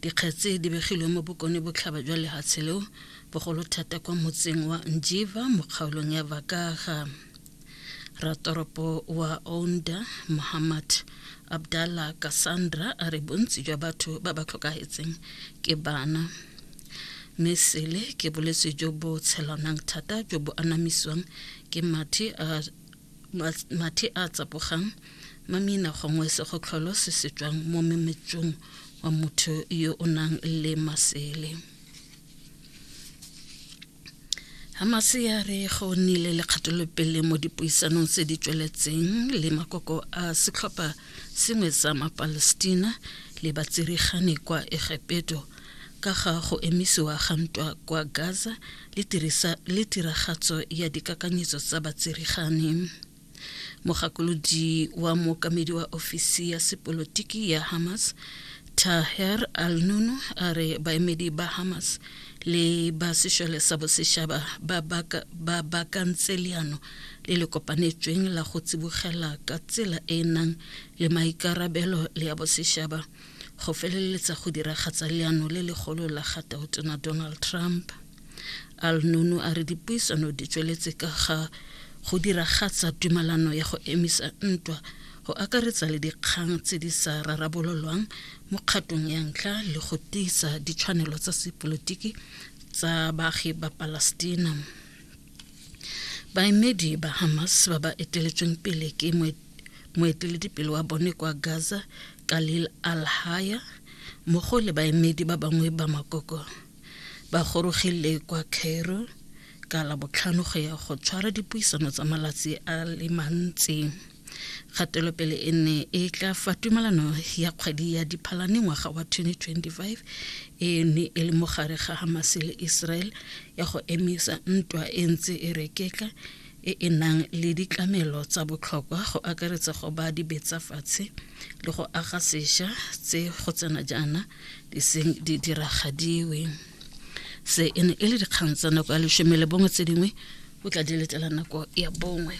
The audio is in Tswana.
Dikgetse di begilwe mo bokone botlhaba jwa lehatshe leo, bogolo thata kwa motseng wa Njiva mo kgaolong ya Vakaga. Ratoropo wa Ounda Muhammad Abdallah Cassandra a re bontsi jwa batho ba ba tlhokagetseng ke bana. Mme sele ke bolwetse jo bo tshelanang thata jo bo anamisiwang ke mathe a mathe a tsapogang mamina gongwe segotlholo se se tswang mo memetsong wa motho yo o nang le masele Hamase ya re go nnile le kgatolopele mo dipuisanong tse di tsweletseng le makoko a setlhopha sengwe sa mapalestina le batsirigane kwa egepeto ka ga go emisiwa ga ntwa kwa Gaza le tirisa le tiragatso ya dikakanyetso tsa batserigane. Mogakolodi wa mookamedi wa ofisi ya sepolotiki ya Hamas Taher al-Nunu a re baemedi ba Hamas le ba sešole sa bosešaba ba bakantse leano le le kopanetsweng la go tsibogela ka tsela e e nang le maikarabelo le ya bosešaba go feleletsa go diragatsa leano le legolo la ga tautona donald trump al nunu a re dipuisano di tsweletse ka ga go diragatsa tumalano ya go emisa ntwa go akaretsa le dikgang tse di sa rarabololwang mo kgatong ya ntlha le go tiisa ditshwanelo tsa sepolotiki tsa baagi ba palestina baemedi ba hamas ba ba eteletsweng pele ke moeteledipele wa bone kwa gaza kalil al-haya mmogo le baemedi ba bangwe ba makoko ba gorogile kwa cairo ka labotlhano go ya go tshwara dipuisano tsa malatsi a le mantsi Kgatelopele e ne e tla fa tumalano ya kgwedi ya Diphalane ngwaga wa 2025 e ne e le mogare ga Hamas le Israel ya go emisa ntwa e ntse e rekeka e e nang le ditlamelo tsa botlhokwa go akaretsa go ba dibetsa fatshe le go aga sesha tse go tsena jaana di seng di diragadiwe se e ne e le dikgang tsa nako ya lesome le bongwe tse dingwe o tla di letela nako ya bongwe